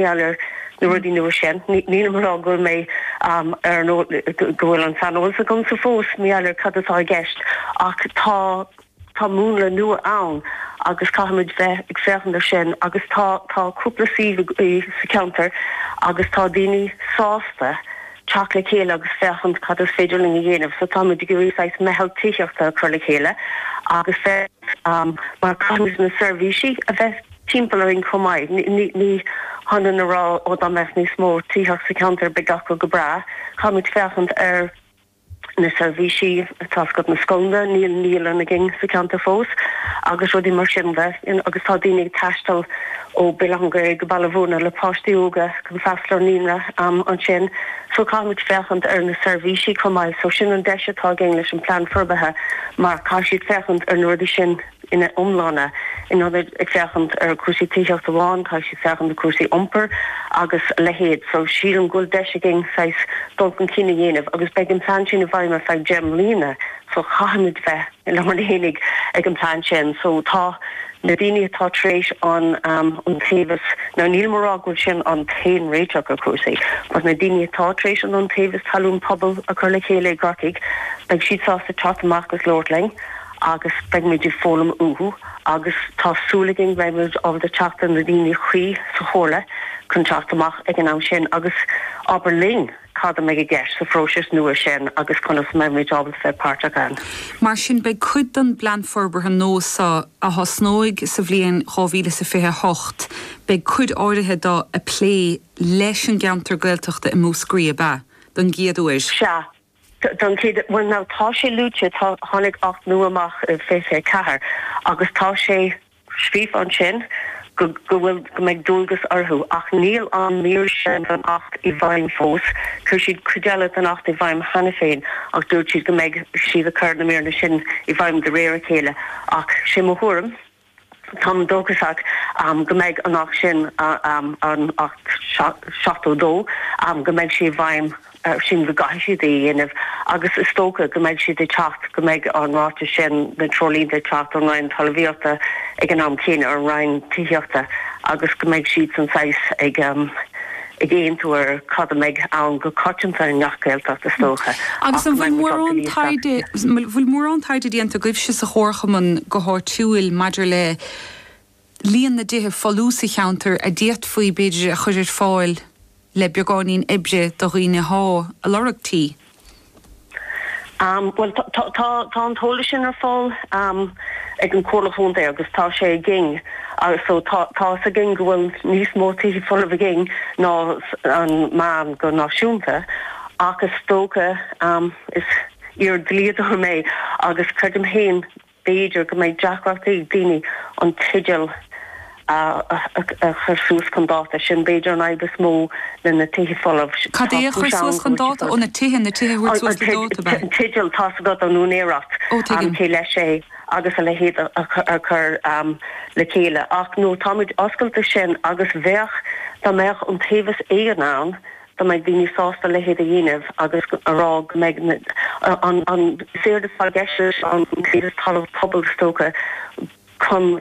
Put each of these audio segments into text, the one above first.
gheall ar na rudaí nua sin. Nílim ag rá go bhfuil mé ar an go bhfuil an saineolas agamsa fós mar gheall ar cad atá i gceist ach tá tá múnla nua ann agus caithfimid bheith ag féachaint ar sin agus tá tá cúpla suíomh sa cheantar agus tá daoine sásta teacht le chéile agus féachaint cad is féidir linn a dhéanamh so táimid ag iarraidh saghas meitheal tithíochta a chur le chéile agus bheith mar caithfimid na seirbhísí a bheith timpeall orainn chomh maith. Ní féidir linn a rá ó dá mbeadh níos mó tithíocht sa cheantar beidh gach rud go breá. Caithfimid féachaint ar na seirbhísí, tá's agat, na scoileanna, níl naíolann againn sa cheantar fós agus rudaí mar sin de. Agus tá daoine ag taisteal ó Bhéal Átha an Ghaorthaidh go Baile Bhuirne le páistí óga chun freastal ar naíonra ansin. So caithfimid féachaint ar na seirbhísí chomh maith. So sin an deis atá againn leis an Plean Forbartha mar caithfidh siad féachaint ar na rudaí sin. ina iomláine. In ionad ag féachaint ar chúrsaí tithíochta amháin caithfidh siad féachaint ar chúrsaí iompair agus a leithéid. So sílim go bhfuil deis againn saghas dul chun cinn a dhéanamh agus beidh an plean sin i bhfeidhm ar feadh deich mbliana so caithfimid bheith lárnach fhéinig ag an plean sin. So tá na daoine atá tar éis an Iontaobhas, now nílim ag rá go bhfuil sin an t-aon réiteach ar chúrsaí but na daoine atá tar éis an Iontaobhas Talún Pobail a chur le chéile i gCorcaigh beidh siad sásta teacht amach agus labhairt linn. agus beidh muid ag foghlaim uathu agus tá súil againn beidh muid ábalta teacht ar na daoine cuí sa chomhairle chun teacht amach ag an am sin agus labhairt linn cad a mbeidh i gceist sa phróiseas nua sin agus conas a mbeidh muid ábalta bheith páirteach ann. Mar sin beidh cuid den bplean forbartha nua seo, a thosnóidh sa bhliain 2028, beidh cuid áirithe de ag plé leis an gceantar Gaeltachta i Múscraí, ab ea? don gcéad uair. Sea, Don chéad, bhuel now tá sé luaite, tá, tháinig acht nua amach i 24 agus tá sé scríofa ansin go, go bhfuil, go mbeidh dualgas orthu ach níl an mír sin den acht i bhfeidhm fós, chuir siad cuid eile den acht i bhfeidhm cheana féin ach dúirt siad go mbeidh siad ag cur na míreanna sin i bhfeidhm de réir a chéile ach sé mo thuairim. Táim dóchasach go mbeidh an alt sin, an alt 72, go mbeidh sé i bhfeidhm, sílim go gcaithfidh siad é a dhéanamh agus is dócha go mbeidh siad ag teacht, go mbeidh an ráiteas sin, na treoirlínte ag teacht ón Roinn Talmhaíochta ag an am céanna, an Roinn Tithíochta agus go mbeidh siadsan saghas ag, ag aontú ar cad a mbeidh ann go coitianta i ngach Gaeltacht is dócha, agus an bhfuil mórán taighde, bhfuil mórán taighde déanta agaibhse sa chomharchumann go háitiúil maidir le líon na dtithe folmha sa cheantar a d'fhéadfaí, b'fhéidir, a chur ar fáil le beagáinín oibre do dhaoine atá ag lorg tí? Bhuel, tá an t-eolas sin ar fáil ag an Chomhairle Chontae agus tá sé againn. So, tá 'fhios againn go bhfuil níos mó tithe folamh againn ná an meán go náisiúnta ach is dócha, is iar-dlíodóir mé agus creidim féin B'fhéidir go mbeidh deacrachtaí ag daoine an teideal a chur suas chun dáta. Sin b'fhéidir an fhadhb is mó le na tithe folamh. Cad é Tá a cúis chur suas ann go chun bhfuil siad dáta? Ó, fós. na tithe, na tithe a thabhairt suas le dáta, ba. An teideal, tá's agat an úinéireacht, Ó, tuigim. cé leis é agus a leithéid a chur le chéile. Ach no, táimid oscailte sin agus bheadh, dá mbeadh iontaobhas éigin ann, dá mbeadh daoine sásta a leithéid a dhéanamh agus a rá go mbeidh an séard atá i gceist leis iontaobhas talamh pobail is dócha chun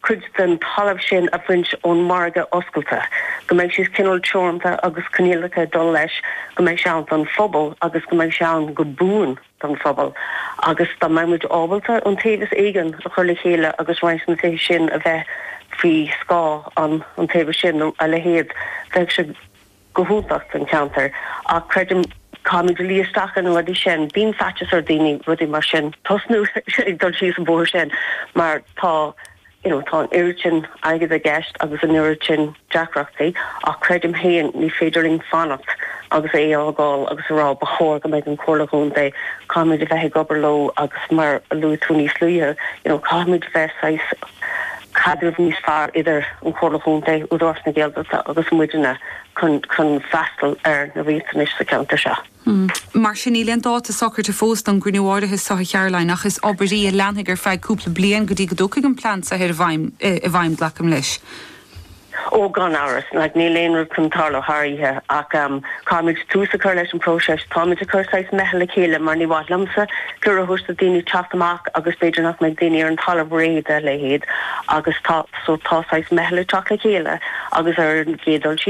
cuid den talamh sin a bhaint ón margadh oscailte, go mbeidh sé cineál teoranta agus coinníollacha ag dul leis, go mbeidh sé ann don phobal agus go mbeidh sé ann go buan don phobal agus dá mbeadh muid ábalta iontaobhas éigin a chur le chéile agus roinnt na tithe sin a bheith faoi scáth an iontaobhas sin nó a leithéid, bheadh sé. go hiontach don cheantar ach creidim caithfimid luí isteach ar na rudaí sin. Bíonn faitios ar daoine rudaí mar sin tosnú ag dul síos an bóthar sin mar tá you know tá an oiread sin airgead i gceist agus an oiread sin deacrachtaí ach creidim féin ní féidir linn fanacht agus é a fhágáil agus a rá ba chóir go mbeidh an Comhairle Contae caithfimid a bheith ag obair leo agus mar a luaigh tú níos luaithe you know caithfimid bheith saghas caidreamh níos fearr idir an Chomhairle Chontae, Údarás na Gaeltachta agus muidne chun freastal ar na riachtanais sa cheantar seo. Mar sin, níl aon dáta socraite fós don gcruinniú áirithe seo a Charoline ach is obair í a leanfaidh ar feadh cúpla bliain go dtí go dtiocfaidh an plean saothair i bhfeidhm, glacaim leis. Ó, gan amhras. Like níl aon rud chun tarlú thar oíche. Ach caithfimid tús a chur leis an bpróiseas. Táimid ag cur saghas meitheal le chéile mar ní mhaith liomsa cuireadh a thabhairt do dhaoine teacht amach agus b'fhéidir nach mbeidh daoine ar an talamh réidh dá leithéid agus tá, so tá saghas meitheal ag teacht le chéile agus ar an gcéad dul síos